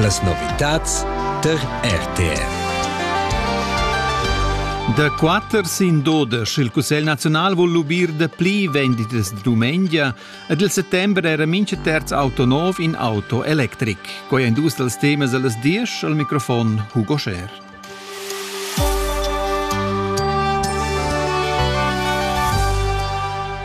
Las novitads tar RTV. Da quatter sin dodesch il Cussegl nazional vul lubir da pli venditas de dumengia ed il settembre era mincha terz auto nov in auto electric. Quei ein dus dals temas allas diesch al microfon Hugo Scher.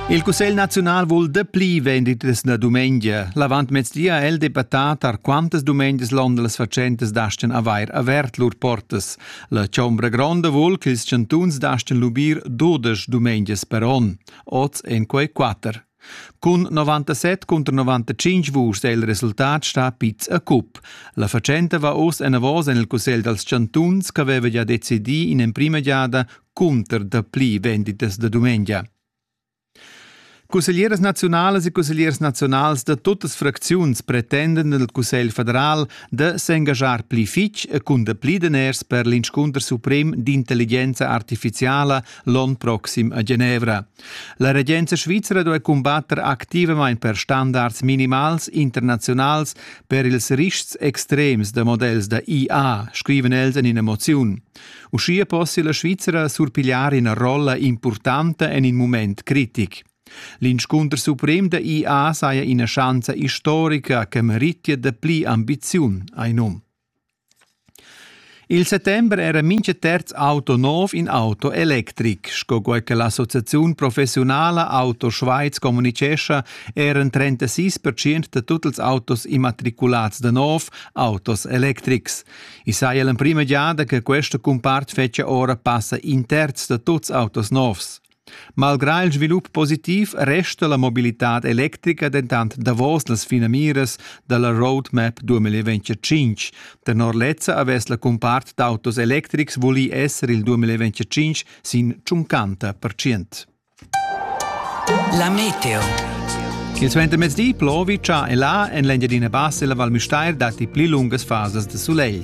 Il Cussegl naziunal vul dapli venditas na dumengia. L'avantmezdi ha el debattà tar quantas dumengias l'onda las fatschentas dastan avair avert lur portas. La Chombra Gronda vul che ils chantuns dastan lubir dudesch dumengias per onn. Oz en quei quatter. Cun 97 cunter 95 vuschs è il resultat stà piz a cup. La fatschenta va oz enavos en il Cussegl dals chantuns ch'aveva gia decidì in emprima giada cunter dapli venditas da dumengia. Cusseglieras naziunalas e cussegliers naziunals da tuttas fracziuns pretenden al Cussegl federal da s'engaschar pli fitg e cun dapli daners per l'inscunter suprem d'intelligenza artifiziala l'onn proxim a Genevra. La regenza svizra duai cumbatter activamain per standards minimals internaziunals per ils rischs extrems da models da IA, scriven els en ina moziun. Uschia possia la Svizra surpigliar ina rolla impurtanta en in mument critic. L'inscunter suprem da IA saja ina schanza istorica che meritia dapli ambiziun, hai num. Il settember era mintga terz auto nov in auto electric. Sco quai che l'associaziun professiunala Auto Schweiz communicescha, eran 36 percent da tut ils autos immatriculads da nov autos electrics. I saja l'emprima giada che questa cumpart fetgia ora passa in terz da tuts autos novs. Malgrà il svilup positiv resta la mobilitad electrica dentant davos las finamiras da la Roadmap 2025. Tenor lezza avess la cumpart d'autos electrics vulì esser il 2025 sin 50 percent. La meteo. Il suentermezdi plovi già e là en l'Engiadina Bassa e la Val Müstair datti pli lungas fasas de soleil.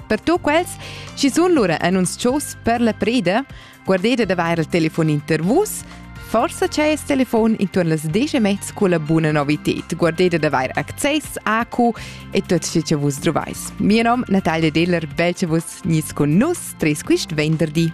Per tu quels, chi sun lura annunzchos per la preda, guardete d'avair il telefon inter vus, forse c'è il telefon intorno las 10 e mezza con la buona novited. Guardete d'avair access a cu e tot ciò che vus trovais. Mio nom Natalia Diller, bel che vus nis con nus, tres quist venderdi.